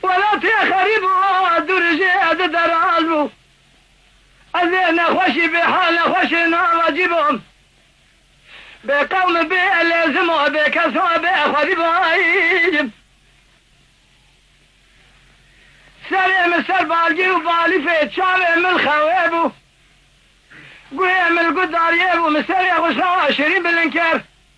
Welatê xerîb û adûrijê edi deraz bû. Ez ê nexweşî bê hal nexweşê navacî bûm. Bê qewm û bê lêzim û bê kes û bê xwedî bûayîjim. Serê min ser balgî û balîfê çavê min xewê bû. Guhê min li guh dariyê bû, min serê xwe ji xewa şirîn bilind kir.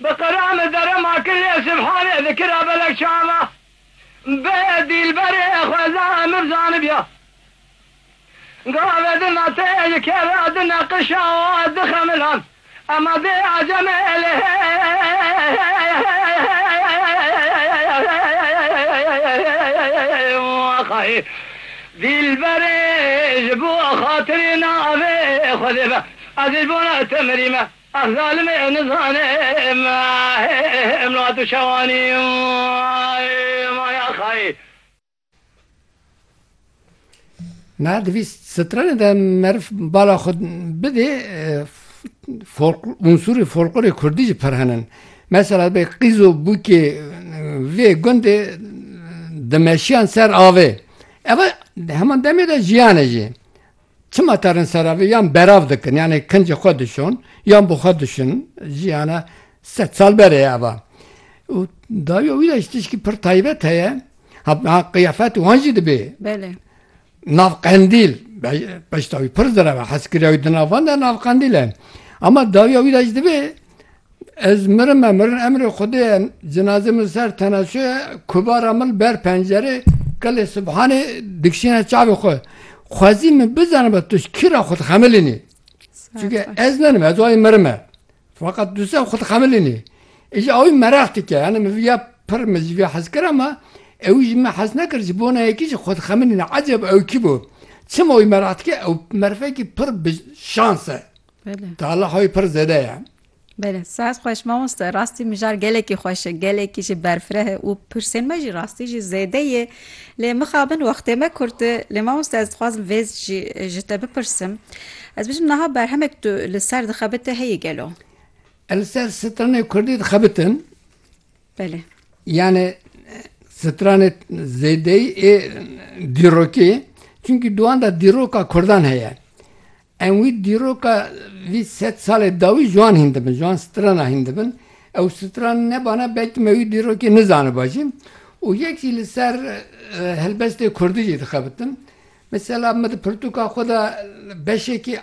Bi qireme dere ma kirê Sibhanê di kira belek çava bê dîlberê xweza emir zanibya. Gave di nateyê ji kera di neqişa û di xemilan ema dê acemê lê xayê dîlberê ji bo xatirê navê xwedê be ez ji bo te mirîme. Ah zalimê em nizane me em la tu şewanî maya xayê. Me divîst stranê de meriv bala xwe bidê unsurê folklorê kurdî jî pirhenin. Mesela bê qîz û bûkê vê gundê dimeşiyan ser avê. Ev heman demê de jiyan e jî. Çima terin sera vê yan berav dikin yanê kincê xwe dişon yan bi xwe dişin jiyana sed sal berê ye eva û dawiya wî de ji tişkî pir taybet heye ha qiyafet wan jî dibê Belê. nav qendîl beşta wî pir zereve heskiriya wî di nav van de nav qendîl e ema dawiya wî de jî dibê Ez mirim me mirin emrê Xwedê ye cinazê min ser tenaşo ye kubara min ber pencerê qilê Subhanê dikişîne çavê xwe. Xwezî min bizanibe tu ji kî re xwe dixemilînî. Çunke ez nenim ez wayî mirim me. Feqet tu ser xwe dixemilînî. Îjî ewî mereq dike yanî min viya pir min ji vê hez kir ema ewî ji min hez nekir ji bona yekî jî xwe dixemilîne eceb ew kî bû. Çima wî mereq dike ew merifekî pir bi şans e. Bele. Tala xwe pir zêde ye. Bele, sehet xweş mamoste. Rastî mijar gelekî xweş e, gelekî jî berfireh e û pirsên me jî rastî jî zêde yê. Lê mixabin wextê me kurt e. Lê mamoste ez dixwazim vê jî ji te bipirsim. Ez bijim niha berhemek tu li ser dixebite heye gelo? Ez li ser stranê kurdî dixebitim. Bele. Yanê stranê zêdeyî ê dîrokê. Çimkî di wan de dîroka kurdan heye. Em wî dîroka vî sed salê dawî ji wan hîn dibin, ji wan strana hîn dibin. Ew stran nebana belkî me wî dîrokê nizaniba jî û yek jî li ser helbestê kurdî jî dixebitin. Mesela min di pirtûka xwe de beşekî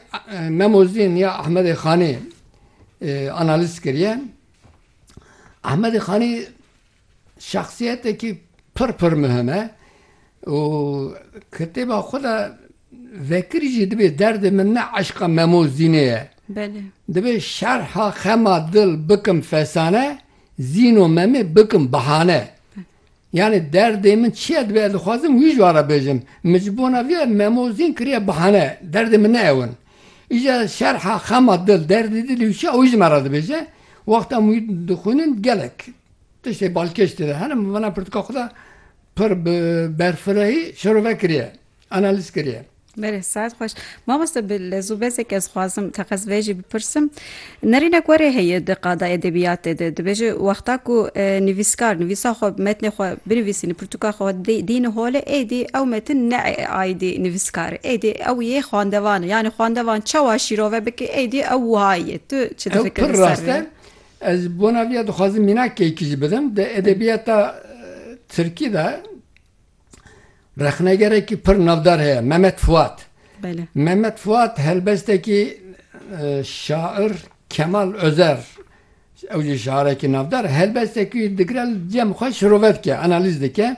Memozîn ya Ehmedê Xanê analîz kiriye. Ehmedê Xanî. Şexsiyetekî pir pir mihim e û kitêba xwe de vekirî jî dibê derdê min ne eşqa Memo Zînê ye. Dibê şerha xema dil bikim fesane, Zîno Memê bikim bihane. Yanî derdê min çi ye dibê ez dixwazim wî ji wan re bêjim. Min ji bona vê ya Memo Zîn kiriye bihane. Derdê min ne ew in. Îja şerha xema dil, derdê dilê wî çi ye ewî ji me re dibêje. Wexta em wî dixwînin gelek Tiştê balkêş têde hene mivana pirtika xwe de pir bi berfirehî şirove kiriye, analîz kiriye. Berê saet xweş. Mamoste bi lezûbezek ez xwazim teqez vê jî bipirsim. Nerînek werê heye di qada edebiyatê de. Dibêje wexta ku nivîskar nivîsa xwe metnê xwe binivîsîne pirtuka xwe dîne holê êdî ew metin ne aîdî nivîskare êdî ew yê xwendevan e. Yanî xwendevan çawa şîrove bike êdî ew wiha ye. Tu çi difikirî ser vê? Ez bona vî ya dixwazim mînakekî jî bidim. Di edebîyata tirkî de rexnegerekî pir navdar heye Memed Fuat. Memed Fuat helbestekî şair Kemal Ozer ew jî şairekî navdar e. Helbestekî wî digire li cem xwe şirove dike, analîz dike.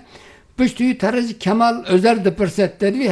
Piştî wî te re jî Kemal Ozer dipirse te divî